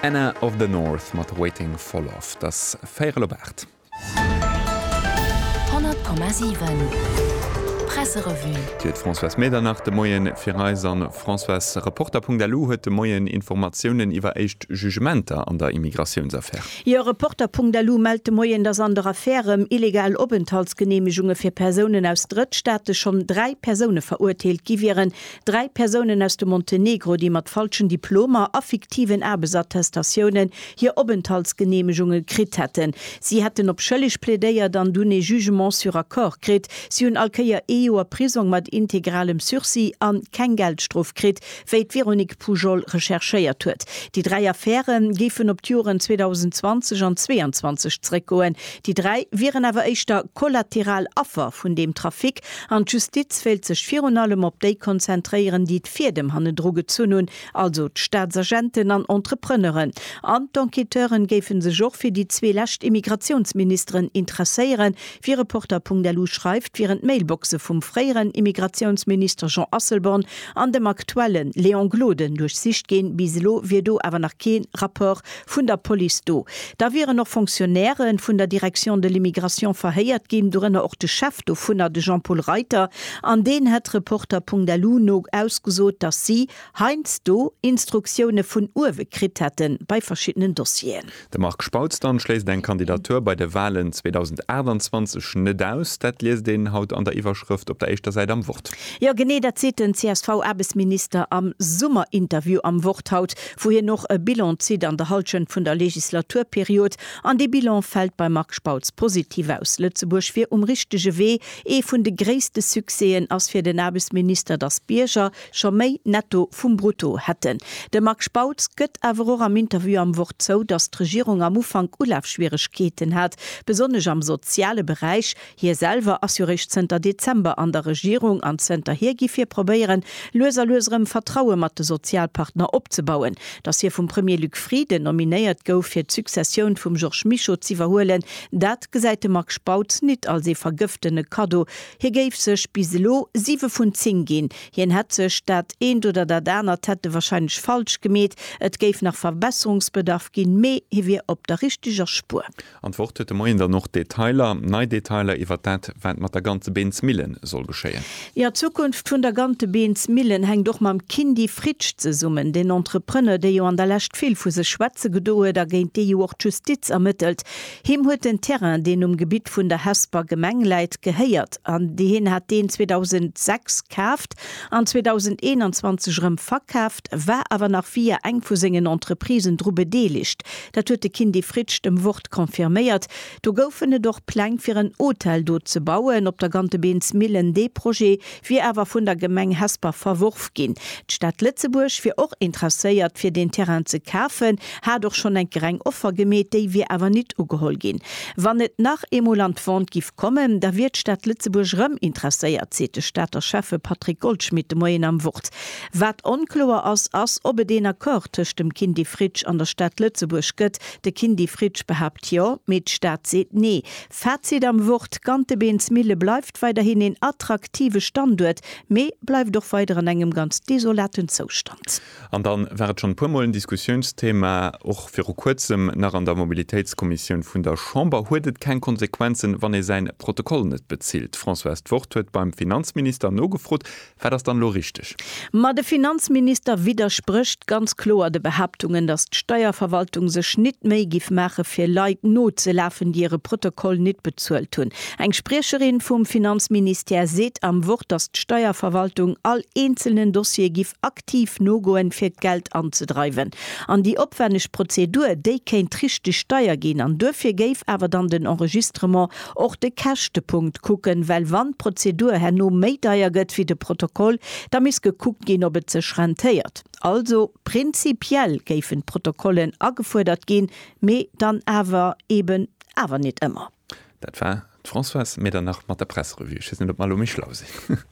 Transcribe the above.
Anna of the North mat Waiting for Love. Et ass véierel op aacht. 100,7 Presserevue. D'Huet d'Françoise Medernach de Moien fir eis an Françoise Reporter.lu huet de Moien Informatiounen iwwer éischt Jugementer an der Immigratiounsaffär. Jo, Reporter.lu mellt de Moien, datt an der Affär rëm illegal Openthaltsgeneemegunge fir Persounen aus Drëttstaate schonn dräi Persoune verurteelt gi wieren, Dräi Persounen aus dem Montenegro, déi mat falschen Diplomer a fiktiven Aarbechtsattestatiounen hir Openthaltsgeneemegunge kritt hätten. Si hätten op schëlleg plädéiert an dunn ee Jugement sur accord kritt. Si hunn all Kéier ee Joer Prisong mat integralem Sursis a keng Geldstrof kritt, wéi d'Véronique Pujol recherchéiert huet. Déi dräi Affäre géifen op d'Joren 2020 an 22 zeréckgoen. Déi dräi wieren awer éischter kollateral Affer vun deem Trafic, An d'Justiz wéilt sech virun allem op déi konzentréieren, déi d'Fiedem hannedru gezunn hunn, also d'Staatsagenten an Entrepreneuren. An d'Enquêteuren géife sech och fir déi zwee lescht Immigratiounsministeren interesséieren. Wéi Reporter.lu schreift, wieren d'Mailboxe vum fréieren Immigratiounsminister Jean Asselborn an dem aktuelle Léon Gloden duerchsicht ginn. Bis elo wier do awer nach kee Rapport vun der Police do. Da wieren och Fonctionnairë vun der Direction de l'immigration verhéiert ginn, dorënner och de Chef dovunner, de Jean-Paul Reiter, an deen hätt Reporter.lu no ausgesot, datt si heiansdo Instruktioune vun uewe kritt hätte bei verschiddenen Dossieren. De Marc Spautz dann schléisst eng Kandidatur bei de Walen 2028 net aus. Dat liest een haut an der Iwwerschrëft op der éischter Säit am Wort. Jo, genee dat seet den CSV-Aarbechtsminister am Summerinterview am Wort haut. wou hien och e Bilan zitt an der Hallschent vun der Legislaturperiod, an dee Bilan fält beim Marc Spautz positiv aus. Lëtzebuerg wier um richtege Wee. Ee vun de gréisste Succèsen ass fir den Aarbechtsminister, datt d'Bierger scho méi Netto vum Brutto hätten. De Marc Spautz gëtt awer och am Interview am Wort zou, datt d'Regierung am Ufank Ulafschwieregkeeten hat, besonnesch am soziale Beräich. Hie selwer ass jo réischt zënter Dezember an der Regierung an zënterhier giff hie probéieren, lues a lues erëm Vertraue mat de Sozialpartner opzebauen. Datt hie vum Premier Luc Frieden nominéiert gouf, fir d'Successioun vum Georges Mischo z'iwwerhuelen, dat gesäit de Marc Spautz nit als ee vergëftene Kaddo. Hie géif sech bis elo siwe vun zéng ginn. Hien hätt sech dat eent oder dat anert hätt e warscheinlech falsch gemeet, et géif nach Verbesserungsbedarf ginn, mee hie wier op der richteger Spuer. An d'Wort huet de Moien dann och d'Detailer, nei Detailer iwwert dat, wat mat der Gantebeensmillen soll geschéien. Jo, d'Zukunft vun der Gantebeensmillen hänkt och mam Kindy Fritsch zesummen. Deen Entrepreneur, dee jo an der Lescht vill vu sech schwätze gedo huet a géint dee jo och d'Justiz ermëttelt, him huet den Terrain, deen um Gebitt vun der Hesper Gemeng läit, gehéiert. Hien hat deen 2006 kaaft an 2021 erëm verkaaft, war awer nach via eng vu sengen Entreprisen dru bedeelegt. Dat huet de Kindy Fritsch dem Wort confirméiert. Do goufen et och Pläng fir en Hotel do ze bauen, op der Gantebeensmillen. Dee Projet wier awer vun der Gemeng Hesper verworf ginn. D'Stad Lëtzebuerg wier och interesséiert fir deen Terrain ze kafen, hat och schonn eng greng Offer gemeet, déi wier awer nit ugeholl ginn. Wann et nach eemol an d'Vente giff kommen, da wier d'Stad Lëtzebuerg rëm interesséiert, seet de Stater Schäffe Patrick Goldschmidt de Moien am Wort. Wat onkloer ass, ass ob et een Accord tëscht dem Kindy Fritsch an der Stad Lëtzebuerg gëtt. De Kindy Fritsch behaapt jo, mee d'Stad seet nee. Fazit am Wort, Gantebeensmille bleift weiderhin een attraktive Standuert, mee bleift och weider an engem ganz desolaten Zoustand. An dann war et schonn e puer Mol en Diskussiounsthema, och viru kuerzem nach an der Mobilitéitskommissioun vun der Chamber, Huet et keng Konsequenzen, wann ee säin Protokoll net bezilt? Françoise, d'Wort huet beim Finanzminister nogefrot. Wat ass dann elo richteg? Ma de Finanzminister widdersprécht ganz kloer de Behaaptungen, datt d'Steierverwaltung sech nit d'Méi giff maache fir Leit nozelafen, déi hire Protokoll nit bezuelt hunn. Eng Spriecherin vum Finanzministère seet am Wort, datt d'Steierverwaltung all eenzelnen Dossier giff aktiv nogoen, fir d'Geld anzedreiwen. An déi opwenneg Prozedur, déi kéint richteg deier ginn an duerfir géif awer dann den Enregistrement Och de Käschtepunkt kucken, well wann d'Prozedur herno méi deier gëtt wéi de Protokoll, da misst gekuckt ginn, ob et sech rentéiert. Also prinzipiell géifen d'Protokollen agefuerdert ginn, mee dann awer eben awer net ëmmer. Dat war d'Françoise Medernach mat der Presserevue. Ech weess net, ob mer elo méi schlau sinn.